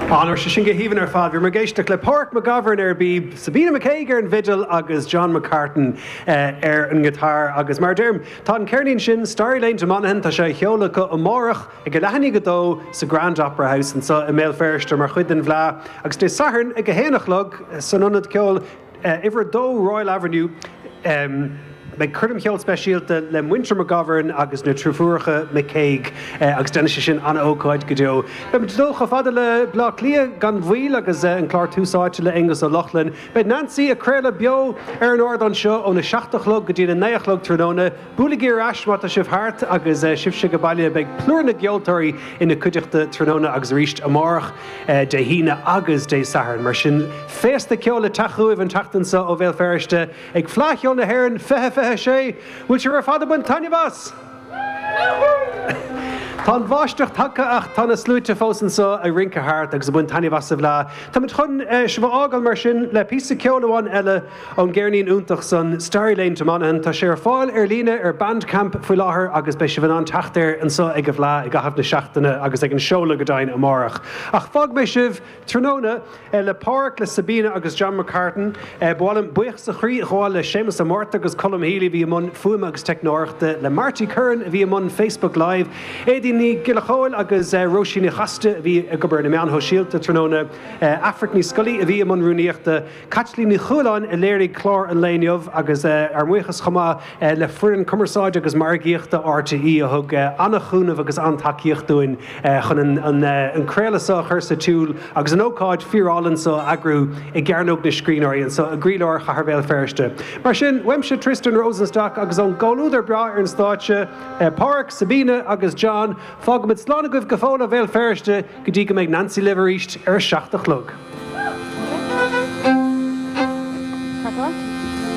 Ó, bhí sé sin go haoibhinn ar fad. Bhí muid ag éisteacht le Páraic McGovern ar an bpíb, Sabina McCague ar an bhfidil agus John McCartan ar an ngiotár. Agus mar a deirim, tá an ceirnín san, Starry Lane To Monaghan, tá sé á sheoladh acu amárach ag leathuair i ndiaidh a dó sa Grand Opera House anseo i mBéal Feirste mar chuid den bhFleá agus Dé Sathairn ag a haon a chlog san ionad ceoil Uimhir 2 Royal Avenue Beidh coirm cheoil speisialta le Muintir McGovern agus na Driofúracha McCague agus déanfaidh sé sin an-ócáid go deo. Beimid ag dul chomh fada le Bleá Cliath gan mhoill agus an clár Tús Áite le Aonghus Ó Lochlainn. Beidh Nancy ag craoladh beo ar an ardán seo óna seacht a chlog go dtí a naoi a chlog tráthnóna. Buailigí ar ais má tá sibh thart agus sibhse ag baile, beidh plúr na gceoltóirí ina cuideachta tráthnóna agus arís amárach, Dé hAoine agus Dé Sathairn. Mar sin, féasta ceoil le teacht chugaibh an tseachtain seo ó Bhéal Feirste ag Fleadh Cheoil na hÉireann 2026! An bhfuil sibh ar fad ag baint taitneamh as? Tá an bháisteach tagtha ach tá na sluaite fós anseo ag rince thart agus ag baint taitneamh as an bhFleadh. Táimid chun sibh a fhágáil mar sin le píosa ceoil amháin eile, ón gceirnín iontach san Starry Lane to Monaghan. Tá sé ar fáil ar líne ar Bandcamp faoi láthair agus beidh sibh in ann teacht air anseo ag an bhFleadh i gcaitheamh na seachtaine agus ag an seoladh go deimhin amárach. Ach fágfaidh mé sibh tráthnóna le Páraic, le Sabina agus John McCartan. Ba mhaith liom buíochas ó chroí a ghabháil le Séamus Ó Márta agus Colm Healy a bhí i mbun fuaime agus teicneoireachta, le Marty Curran a bhí i mbun Facebook Live, Éadaoin Nic Giolla Chomhaill agus Róisín Ní Chaiside a bhí ag obair ar na meáin shóisialta tráthnóna, Aifric Ní Scolaí a bhí i mbun rúnaíochta, Caitlín Ní Chualáin a léirigh clár an lae inniu agus ár mbuíochas chomh maith le foireann cumarsáide agus margaíochta RTÉ a thug an-chúnamh agus an-tacaíocht dúinn chun an craoladh seo a chur sa tsiúl agus an ócáid fíorálainn seo a eagrú i gCearnóg na Scríbhneoirí anseo i gcroílár Chathair Bhéal Feirste. Mar sin, uaimse Tristan Rosenstock agus ón gcomhluadar breá ar an stáitse, Páraic, Sabina agus John, fágfaimid slán agaibh go fóill ó Bhéal Feirste! go dtí go mbeidh Nancy libh arís ar a seacht a chlog.